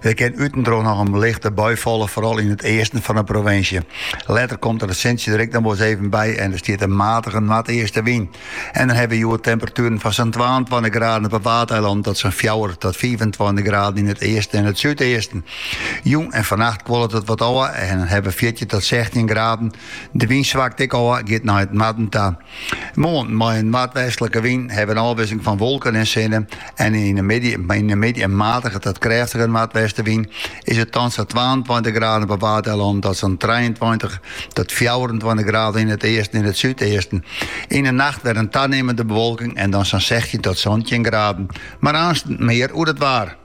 Der kin út en troch noch in lichte bui falle, foaral yn it easten fan de provinsje. Letter komt der it sintsje der ek noch wol ris even by en der stiet in matige noardeastewyn. En dan hawwe we hjoed temperatueren fan sa'n twaentweintich graden op 'e Waadeilannen tot sa'n fjouwer tot fiifentweintich graden yn it easten en it súdeasten. Jûn en fannacht kuolet it wat ôf en dan hawwe we fjirtjin tot sechstjin graden. De wyn swakt ek ôf, giet nei it noarden ta. Moarn mei in noardwestlike wyn hawwe we in ôfwisseling fan wolken en sinne en yn de middei yn de middei in matige ta krêftige noardwestewyn is it dan sa'n twaentweintich graden op 'e Waadeilannen tot sa'n trijeentweintich tot fjouwerentweintich graden yn it easten en it súdeasten. Yn 'e nacht wer in tanimmende bewolking en dan sa'n sechstjin tot santjin graden, mar aanst mear oer it waar.